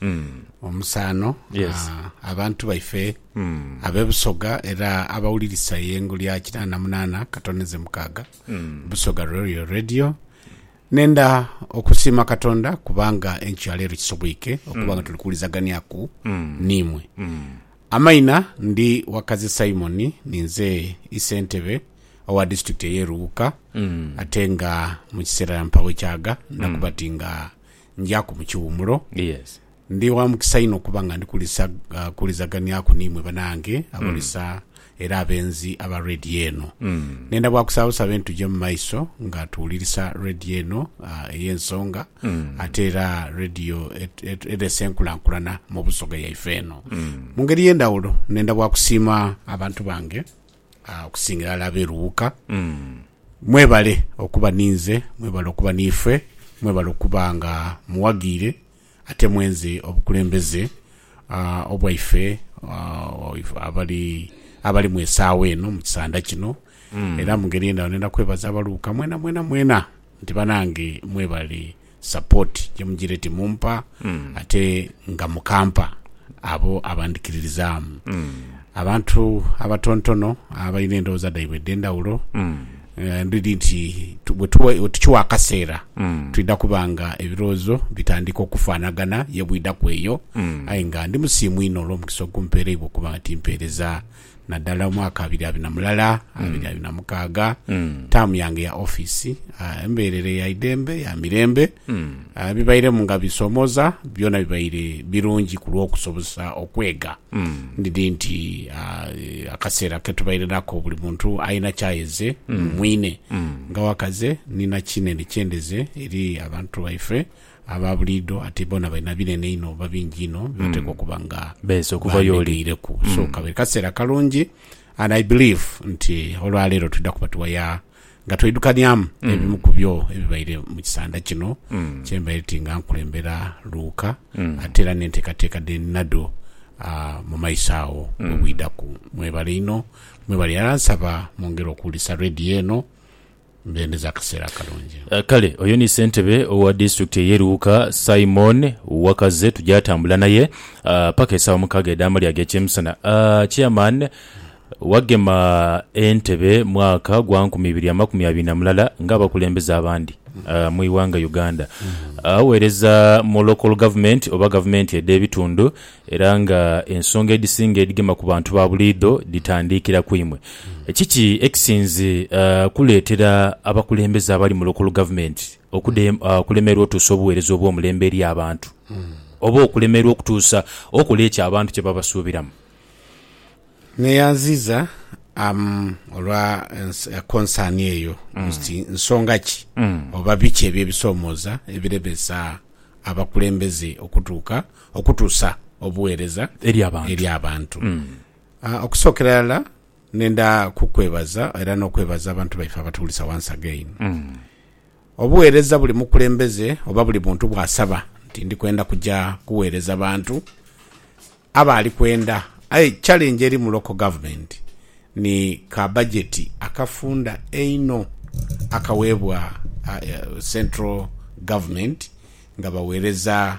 mm. omusaano yes. abantu baife mm. abe Busoga era abawulirisa eyengo lya kinaana na munaana katone ze mukaaga mm. Busoga Royal Radio nenda okusiima katonda kubanga enkyo yaleero kisobweike okubanga mm. tuli kuwulizaganiaku mm. niimwe mm. amaina ndi wakazi simoni ninze isentebe owa disitulikiti eyeruwuka mm. ate nga mu kiseera mpawo ekyaga nakubati mm. nga Njaku mu kiwumulo. Yes. Ndi wa mukisa inho okuba nga ndi kulisa, ah, kuwulizaganiaku n'imwe banange abalisa era abenzi aba Radio eno. Nenda bwa kusaba busabe nituje mu maiso nga tuwulirisa Radio eno, ah, ey'ensonga ate era Radio et- et- eresa enkulankulana mu Busoga yaife eno. Mu ngeri ey'endhawulo, nenda bwa kusiima abantu bange Okusingira ghalala ab'e Luwuka, mwebale okuba ni nze, mwebale okuba niife, mwebale okuba nga muwaghiire ate mwenze obukulembeze obwaife abali abali mu esaawa eno mu kisanda kino. Era mu ngeri endala, ndhenda kwebaza Abaluwuka mwenamwena mwena nti banange mwebale support jemujira eti mumpa ate nga mukampa abo abandikiririzaamu. Abantu abatontono abalina endowooza dhaibwe edhendhawulo ndidhi nti wetukiwa akaseera twidha kuba nga ebirowoozo bitandika okufanagana ye bwidhaku eyo aye nga ndi musiimu inho olwomukisa ogumpereibwa okuba nga timpereza Nadala omwaka abiri abiri na mulala, abiri abiri na mukaaga, taamu yange ya office, ah, emberere ya idembe, ya mirembe, ah, bibairemu nga bisomoza, byona bibaire birungi ku lw'okusobozesa okwega. Ndidhi nti, ah, eh, akaseera ke tubaire nako buli muntu aina kyayeze mu mwine. Nga wakaze, nina kinene kye ndeze eri abantu baife. Aba buliidho ate boona balina binene inho oba bingi inho bye bateekwa okuba nga Beeze okuva y'oli. bandhegeireku. So kabere kaseera kalungi and I believe nti olwaleero twidha kuba tuwaya nga tweidhukanyamu ebimu ku byo ebibaire mu kisanda kino kye mbaire ti nga nkulembera Luuka ate era n'enteekateeka dhe ninadho ah, mu maiso agho obwidhaku. Mwebale inho, mwebale. Era nsaba mwongere okuwulisa radiyo eno. Mbendeza akaseera akalungi. Kale oyo ni ssentebe owa disitulikiti ey'e Luuka, Simon Wakaze tugyatambula naye paka esaawa mukaaga edh'amalya ag'ekyemisana. Chairman, wagema entebe mwaka gwa nkumi ibiri amakumi abiri na mulala ng'abakulembeze abandi mu ighanga Uganda. Aweereza mu Local Government oba gavumenti edh'ebitundu Era nga ensonga edhisinga edhigema ku bantu ba buliidho dhitandiikira ku imwe, kiki ekisinze kuleetera abakulembeze abali mu Local Government okulemerwa otuusa obuweereza obw'omulembe eri abantu oba okulemerwa okutuusa okola ekyo abantu kye babasuubiramu? Neyanziza olwa konsaani eyo nti nsonga ki oba biki ebyo ebisomooza ebiremeesa abakulembeze okutuuka Okutuusa obugheereza eri abantu. Okusookera irala nenda kukwebaza era n'okwebaza abantu baife abatuwulisa once again. Obugheereza buli mukulembeze oba buli muntu bw'asaba nti ndi kwenda kuja kugheereza bantu, aba ali kwenda aye challenge eri mu local government ni ka bajeti akafunda einho akaweebwa central government nga bagheereza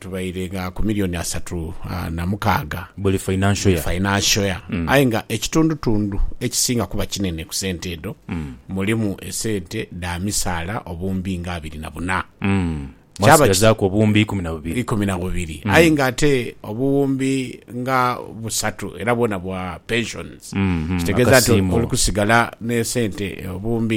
tubaire nga ku milioni asatu na mukaaga buli financial year aye nga ekitundutundu ekisinga kuba kinene ku sente edho mulimu esente dha misaala obuwumbi nga abiri na buna. Mwasigazaaku obuwumbi ikumi na bubiri. Ikumi na bubiri aye nga ate obuwumbi nga busatu era bwona bwa pensions. Kitegeeza nti oli kusigala n'esente obuwumbi.